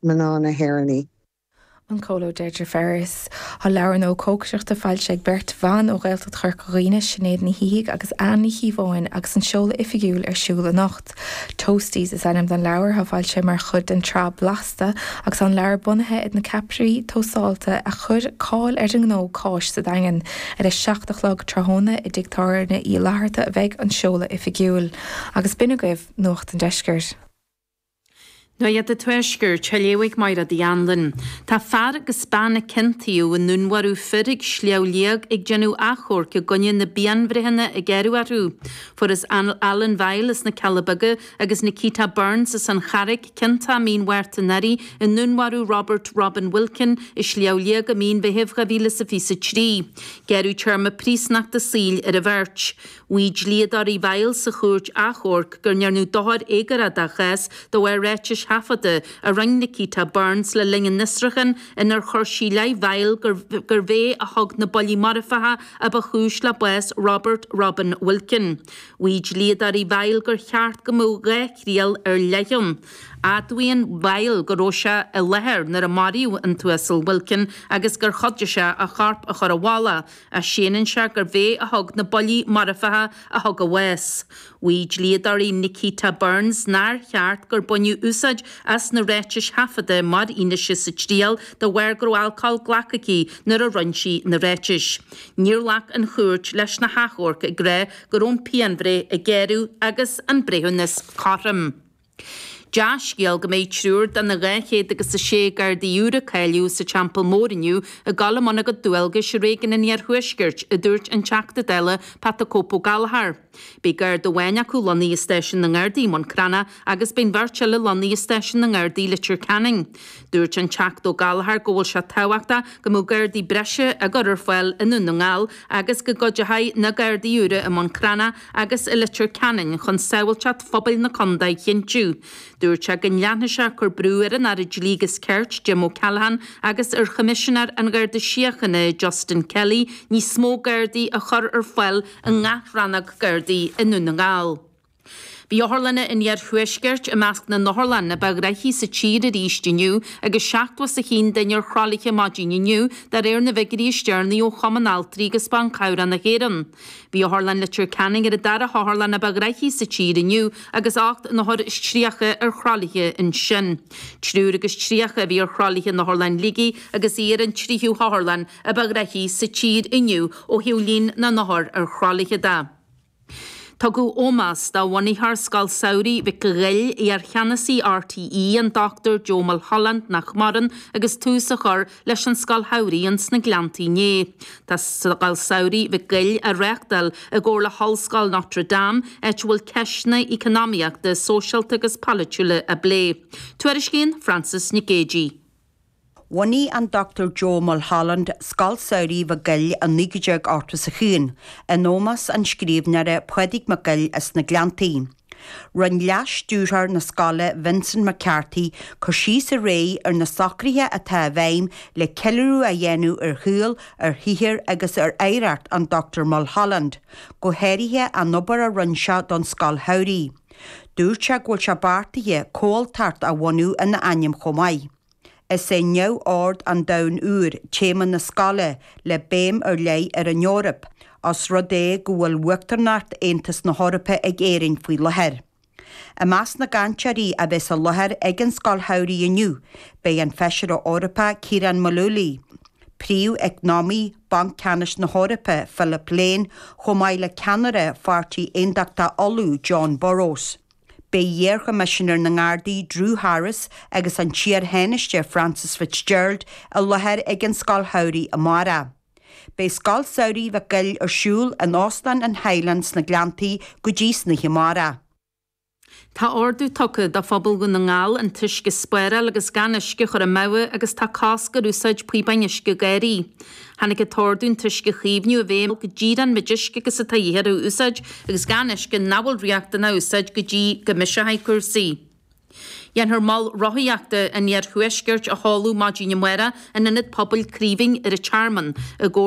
Mná na hÉireann, an Comhairleoir Deirdre Ferris. Tá leabhar nua cócaireachta foilsithe ag beirt bhan ó Ghaeltacht Chorca Dhuibhne, Sinéad Ní Shíthigh agus Anne Ní Chíobháin agus an seoladh oifigiúil ar siúl anocht. Toasties is ainm don leabhar atá foilsithe mar chuid den tsraith Blasta agus tá an leabhar bunaithe ar na ceapairí tósáilte a chuir cáil ar an ngnó cáis sa Daingean. Ar a seacht a chlog tráthnóna i dTigh Tábhairne Uí Fhlatharta a bheidh an seoladh oifigiúil. Agus b'in agaibh Nuacht an Deiscirt. Nuacht an Tuaiscirt, tar liom, Máire T. Anluain. Tá fear agus bean a ciontaíodh i ndúnmharú fir ag Sliabh Liag ag déanamh achomhairc i gcoinne na bpianbhreitheanna a gearradh orthu. Fuarthas Alan Vial as na Cealla Beaga agus Nikita Burns as an Charraic ciontach mí an Mhárta anuraidh i ndúnmharú Robert Robin Wilkin i Sliabh Liag i mí an Mheithimh 2023. Gearradh téarma príosúnachta saoil ar an bheirt. Mhaígh dlíodóirí Vial sa Chúirt Achomhairc go ndearnadh dochar éagórach dá chás de bharr ráitis thaifeadta a rinn' Nikita Burns le linn an fhiosrúcháin inar chuir sí i leith Vial gurbh é a thug na buillí marfacha a ba chúis le bás Robert Robin Wilkin. Mhaígh dlíodóirí Vial gur cheart go mbeadh dhá thriail ar leith ann. Admhaíonn Vial go raibh sé i láthair nuair a maraíodh an tUasal Wilkin agus gur chuidigh sé a chorp a chur i bhfolach Ach séanann sé gurbh é a thug na buillí marfacha a thug a bhás. Mhaígh dlíodóirí Nikita Burns nár cheart gur baineadh úsáid as na ráitis thaifeadta mar fhianaise sa triail de bharr go raibh alcól glactha aici nuair a rinn' sí na ráitis. Níor ghlac an chúirt leis na hachomhairc ag rá go raibh an phianbhreith a gearradh agus an breithiúnas cothrom. Dea-scéal go mbeidh triúr de na 200 agus a sé Gardaí úra a cáilíodh sa Teampall Mór inniu ag gabháil i mbun a gcuid dualgas i réigiún an iarthuaiscirt, a dúirt an Teachta Dála Pat 'the Cope' Ó Gallchóir. Beidh Garda amháin acu lonnaithe i stáisiún na nGardaí i mBun Cranncha agus beidh an bheirt eile lonnaithe i stáisiún na nGardaí Leitir Ceanainn. Dúirt an Teachta Ó Gallchóir go bhfuil sé tábhachtach go mbeadh Gardaí breise á gcur ar fáil i nDún na nGall agus go gcuideoidh na Gardaí úra i mBun Cranncha agus i Leitir Ceanainn chun sábháilteacht phobail na condae a chinntiú. Dúirt sé go nleanfaidh sé ag cur brú ar an Aire Dlí agus Cirt, Jim O'Callaghan agus ar Choimisinéir an Gharda Síochana, Justin Kelly níos mó Gardaí a chur ar fáil i ngach rannóg Gardaí i nDún na nGall. Bhí otharlanna an iarthuaiscirt i measc na n-otharlann a ba ghnoithí sa tír arís inniu agus 70 is 100 duine ar thralaithe maidin inniu de réir na bhfiguirí is deireanaí ó Chumann Altraí agus Ban Cabhrach na hÉireann. Bhí Otharlann Leitir Ceanainn ar an dara hotharlann a ba ghraithí sa tír inniu agus ocht n-othar is tríocha ar thralaithe ansin. Triúr agus tríocha a bhí ar thralaithe in Otharlann Shligigh agus í ar an tríú hotharlann a ba ghraithí sa tír inniu ó thaobh líon na n-othar ar thralaithe de. Tugadh ómós do bhunaitheoir Scoil Samhraidh Mhic an Ghoill, iar-cheannasaí RTÉ, an Dr Joe Mulholland, nach maireann, agus tús á chur, leis an Scoil Shamhraidh sna Gleanntaí inné. Tá Scoil Samhraidh Mhic Goill á reáchtáil i gcomhar le hOllscoil Notre Dame, áit a bhfuil ceisteanna eacnamaíochta, sóisialta agus polaitiúla á bplé. Tuairiscíonn Frances Nic Géadaigh. Bhunaigh an Dr Joe Mulholland Scoil Samhraidh Mhic Goill i 1981 in ómós an scríbhneora Pádraig Mac Goill as na Gleanntaí. Rinne Leas-Stiúrthóir na Scoile Vincent McCarthy cur síos aréir ar na socruithe atá i bhfeidhm le ceiliúradh a dhéanamh ar shaol, ar shaothar agus ar oidhreacht an Dr Mulholland, go háirithe an obair a rinne sé don Scoil Shamhraidh. Dúirt sé go bhfuil sé beartaithe comhaltacht a bhunú ina ainm chomh maith. Is é neamhord an domhain úir téama na scoile le béim ar leith ar an Eoraip, ós rud é go bhfuil uachtaránacht Aontas na hEorpa ag Éirinn faoi láthair. I measc na gcainteoirí a bheas i láthair ag an Scoil Shamhraidh inniu beidh an Feisire Eorpach Ciaran Mullooly, Príomh-Eacnamaí Bhanc Ceannais na hEorpa Philip Lane chomh maith le Ceannaire Pháirtí Aontachtaithe Uladh Jon Burrows. Beidh iarchoimisinéir na nGardaí Drew Harris agus an t-iarthánaiste Frances Fitzgerald i láthair ag an Scoil Shamhraidh amárach. Beidh Scoil Samhraidh Mhic Goill ar siúl in Óstán an Highland sna Gleanntaí go dtí san oíche amárach. Tá ordú tugtha do phobal Dhún na nGall an t-uisce a spáráil agus gan uisce a chur amú agus tá cosc ar úsáid píobáin uisce garraí. Tháinig an t-ordú an t-uisce a chaomhnú i bhfeidhm go díreach an méid uisce agus atá a dhíth air a úsáid agus gan uisce nach bhfuil riachtanach a úsáid go dtí go mbiseoidh cúrsaí. Dhéanfar mol rothaíochta an Iarthuaiscirt a sheoladh maidin amárach in Ionad Pobail Chraoibhín ar an Tearmann i gcomhar